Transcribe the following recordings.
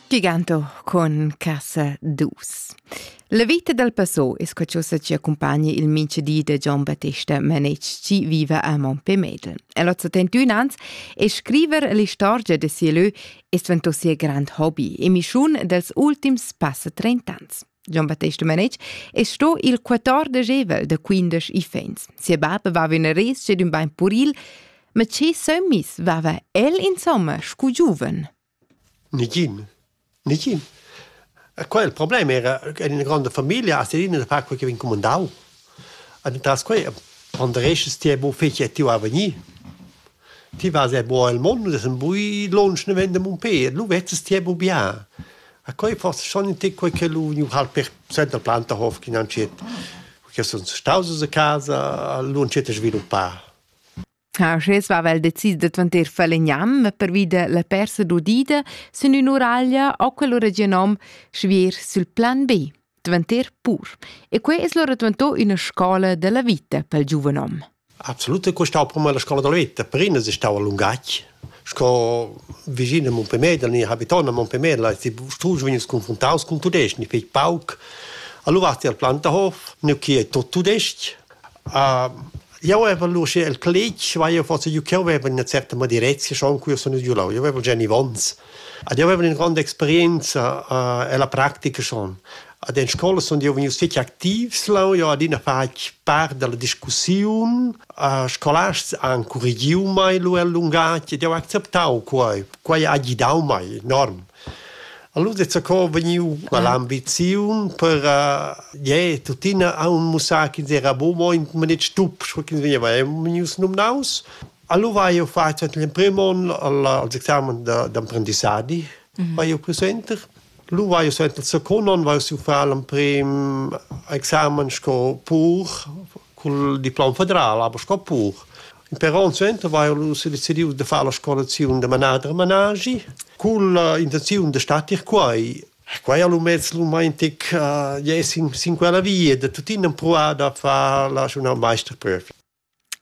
Giganto con casa dus. La vita dal passò es quachosa chi accumpagna il mincha di da Gian Battesta Manetsch chi viva a Montpellier. El ho 71 ans e scriver l'istorgia da sia lö es dvanto sia grand hobby e mischiun dels ultims passa 30 ans. Gian-Battesta Manetsch, e sto il 14 evel da 15 ifens. Sia bab va in res ed un bain puril, ma ce sömmis vava el insomma scu giuven? Nigin. Nigin. Quel il problem era che in grande famiglia a Serina da far quel che vin comandau. Entras quei pondereschas ti era buca fetg che ti va a vegnir. Ti vas era buca el mund, less en bui lunsch naven da Mumpé, lu vezzas ti era buca bia. E quei forsa schon in tic quei che lu vegniu halt per suenter Plantahof ch'in antschet, che sun staus uss a casa, lu entschet a sviluppar. Ah, sches va vel decis da dvanter Falegnam pervi da la persa d'udida sün ün'uraglia o quel regionom schvier sül plan B, dvanter Pur. E quai es lura dvanto üna scola da la vita pel giuvenom. Absolut è stau prima la scola della vita, prima si stava Lungacci, sco vicino a Montpellier, ni habitant a Montpellier, si struge vegni confrontaus con tudesc, ni fec pauc. Allora vasti al Plantahof, nu chi è tot tudesc, Jau avev lur schi el cletg, ma io forsa, io ch'eu aveva üna certa madirezia schon, cu io sun gnü là, io avev già nivons. Ed io avev üna gronda experienza ella practica schon. Ed in scoula sun eu vegnius fich activs leu, io adina fatg part da la discussiun. Scolasts han currigiu mei lur lungatg ed jau ha acceptau quai. Quai ha gidau mei enorm. Allura è co vegniu quell'ambiziun per je tuttina aun mussar ch'ins era bo mo in manet stup, sco ch'ins vegniva vegnius numnaus. Allura hai jeu fatg l'emprim onn als examen d'emprendissadi vai jeu più suenter. Lu vai jeu suenter il secund onn vai jeu far l'emprim examen sco pur cul diplom federal, aber sco pur. Però il center vaia nus decidiu da far la scolaziun da manader managi cun l'intenziun da statir quai. Quai a lumez romantic è sin quella via da tuttina pruar da far la journal meisterprüf.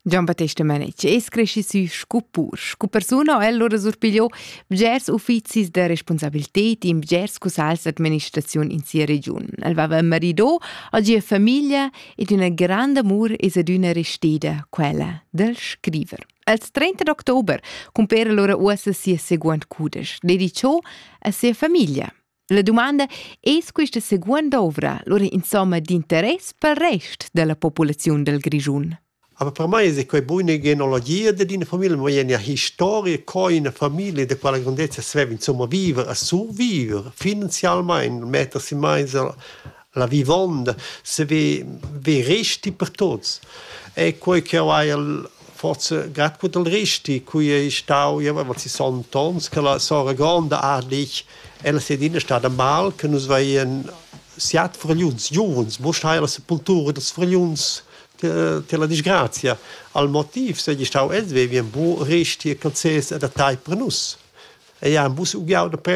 Giambattesta Manic es cresci sü scu pur. Scu persuna ho el lura surpigliò bgers uffizis da responsabilität in bgers cussals d'administraziun in sia regiun. El vava marido, ha gia famiglia ed üna granda amur es adüna resteda quella del scriver. Als 30 d'october cumpera lura uossa sia seguond cudesch, dedicho a sia famiglia. La domanda es quista seguond ovra lura insomma d'interess pel rest della populaziun del Grischun. Aber per mei es quei buna genealogia dad ina famiglia, mo ina historia co ina famiglia da quella grandezza sveva insomma viver e surviver finanzialmein, mettersi meins la vivonda, se ve, ve resti per tuts. È quei ch'jeu haiel forse grad gut al resti, cui ei stau, jeu avevo sessanta onns, che la sora gronda Ardich, ella sei adina stada mal, che nus veien siat fragliuns, giuvens, must hai la sepultura dels fragliuns la disgrazia al motiv segi stau els vevien bu resti e concess adattai per nus. Ei han bus ugiau da prender